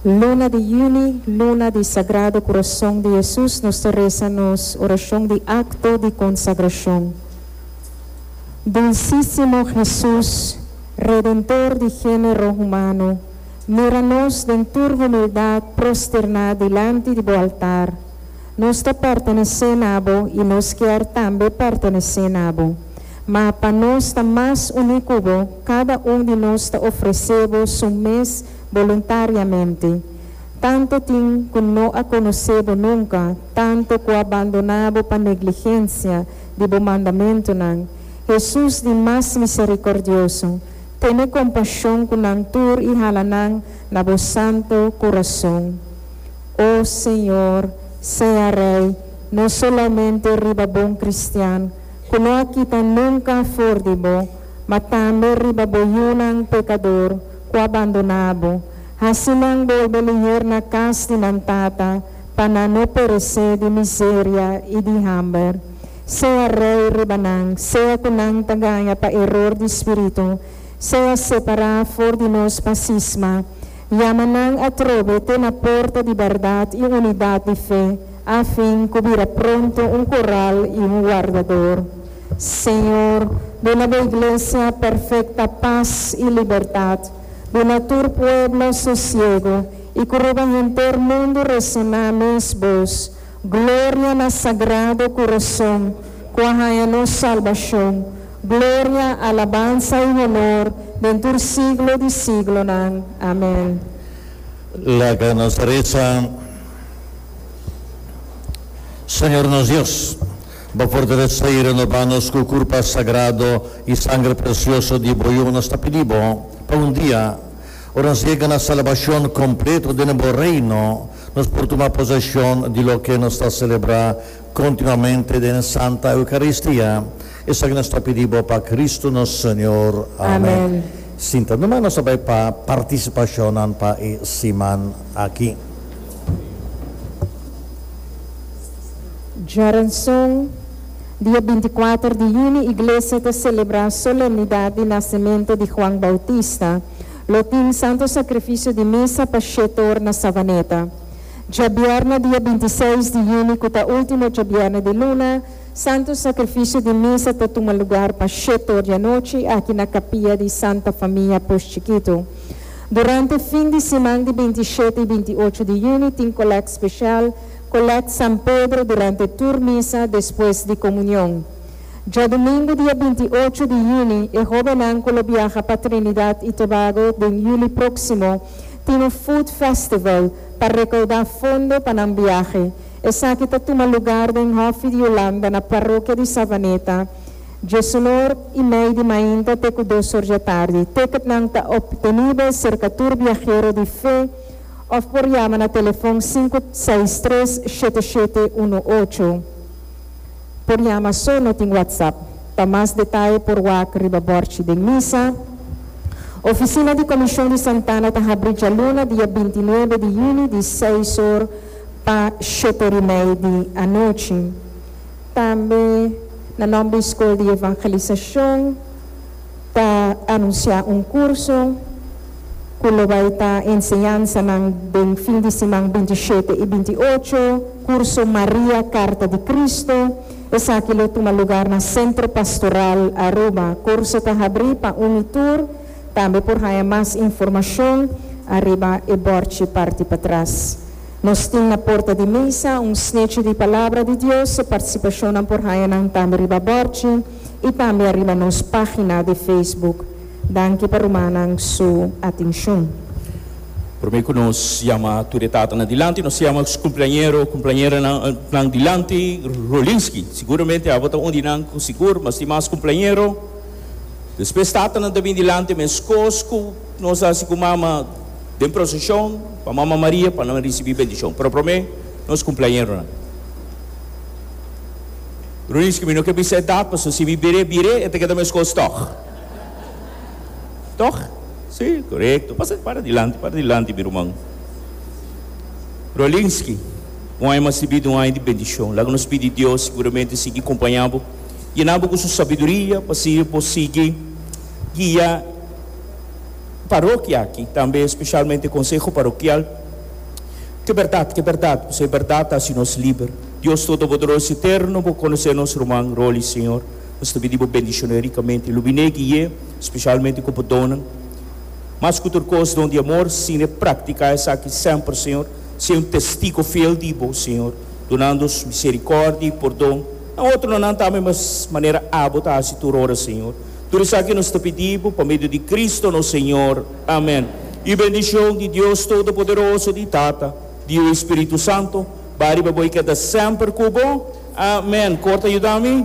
Luna di Juni, Luna di Sagrado Corazon di Jesus, nos ta reza nos oracion di acto di consagracion. Dulcisimo Jesus, Redentor di genero humano, mira nos den tur humildad prosterna dilanti di bo altar. Nos ta pertenece na bo y nos kier tambe pertenece na bo. Ma pa nos ta mas uni cu bo, Kada un di nos ta ofresé bo su mes boluntariamente, tantu tin ku no a konosé bo nunka, tantu ku a bandoná bo pa negligensia di bo mandamentunan. Hesus di Mas Miserikordioso, tene kompashon ku nan tur i hala nan na bo santu kurason. O Señor, sea Rei, no solamente riba bon kristian ku no a kita nunka for di bo, ma tambe riba bo yunan pekador ku a bandoná bo, hasi nan bolbe lihir na kas di nan Tata, pa nan no peresé di miseria i di hamber. Sea Rei riba nan, sea ku nan ta gaña pa eror di spiritu, sea separá for di nos pa sisma, yama nan atrobe te na porta di bèrdat i unidat di fe, afin ku bira pronto un koral i un wardador. Señor, duna bo Iglesia perfecta paz y libertad, duna tur pueblo sosiego y cu riba henter mundo resoná mes bos, Gloria na sagrado curoson cu a haña nos salbacion, Gloria, alabansa y honor den tur siglo di siglonan. Amen. Laga nos resa. Señor nos Dios. Bo fortalesé i renobá nos ku Kurpa sagrado i Sangre presioso di Bo Yu. Nos ta pidi Bo pa un dia, ora nos yega na salbashon kompleto den Bo Reino, nos por tuma poseshon di loke nos ta selebrá kontinuamente den Santa Eukaristia. Esaki nos ta pidi Bo pa Kristu nos Señor. Amèn. Sinta numa, nos a bai pa partisipashonnan pa e siman aki. Djoranson, Dia binti kuater di yuni iglesia ta selebrá solemnidat di nasementu di Huan Boutista. Lo tin Santo Sakrifisio di Misa pa Shetor na Savaneta. Djabièrnè dia binti seis di yuni ku ta último djabièrnè di luna, Santo Sakrifisio di Misa ta tuma lugar pa Shetor di anochi aki na kapia di Santa Famia Pus Chikitu. Durante fin di siman di binti shete i binti ocho di yuni tin kolèkt speshal. Collect San Pedro durante tur misa despues di comunion. Djadumingu dia binti i ocho di juni e hobennan cu lo biaha pa Trinidad y Tobago den juli proximo tin un food festival pa recauda fondo pa nan biahe. Esaki ta tuma lugar den Hoffie di Hulanda na Parokia di Savaneta djesunor y mei di mainta te cu dos orjatardi. Ticketnan ta obtenibe cerca tur biahero di fe. òf por yama na telefòn sinku seis tres shete shete unu ocho. Por yama so no tin WhatsApp. Pa mas detaye por wak riba bòrchi den misa. Ofisina di Komishon di Santana ta habri djaluna dia binti nuebe di yüni di seis or pa shete orimei di anochi. Tambe na nòmber di Skol di Evangelisashon. ta anunsiá un kurso ku lo bai ta enseñansanan den fin di siman binti i shete i binti i ocho, kurso Maria, Karta di Kristu. Esaki lo tuma lugar na Sentro Pastoral Aruba. Kurso ta habrí pa un i tur. Tambe por haña mas informashon ariba e bòrchi parti patras. Nos tin na porta di misa un snechi di Palabra di Dios, so partisipashonnan por haña nan tambe riba bòrchi. y tambe ariba nos pagina di Facebook. Danki pa rumannan su atencion. Prome cu nos yama tur e tatanan dilanti, nos yama nos cumpleañero o cumpleañeranan dilanti. Rolinski, Siguramente abo ta un di nan cu sigur mas tin mas cumpleañero. Despues tatanan ta bin dilanti mescos cu nos a haci cu mama den procesion pa Mama Maria pa nan ricibi bendicion. Pero prome nos cumpleañeronan. Rudiske, mi no ke bisa e dat, paso si mi bire bire e ta keda meskos tog. Tog? Si, korekto. Pasa para dilanti, para dilanti mi ruman. Rolinski, un aña mas ribida, un aña di bendishon. Laga nos pidi Dios siguramente sigui kompaña bo, yena bo ku su sabiduria pa sigui bo sigui guia parokia aki, tambe spesialmente konseho parokial. Ke bèrdat, ke bèrdat, paso e bèrdat ta hasi nos liber. Dios Todopoderoso Eterno, bo conoce nos ruman Rolly, Señor. Nos ta pidi bo bendiciona ricamente y lubine guie, specialmente cu bo donnan. Mas cu tur cos, don di amor, sine practica esaki semper, Señor. Sea un testigo fiel di bo, Señor, dunandos misericordia y pordon, na otronan tambe mes manera abo ta haci tur ora, Señor. Tur esaki nos ta pidi bo pa medio di Cristo nos Señor. Amen. Y bendicion di Dios Todopoderoso, di Tata, di e Espiritu Santo, Bariba bo i keda semper ku bo. Amen. Kor ta yuda mi.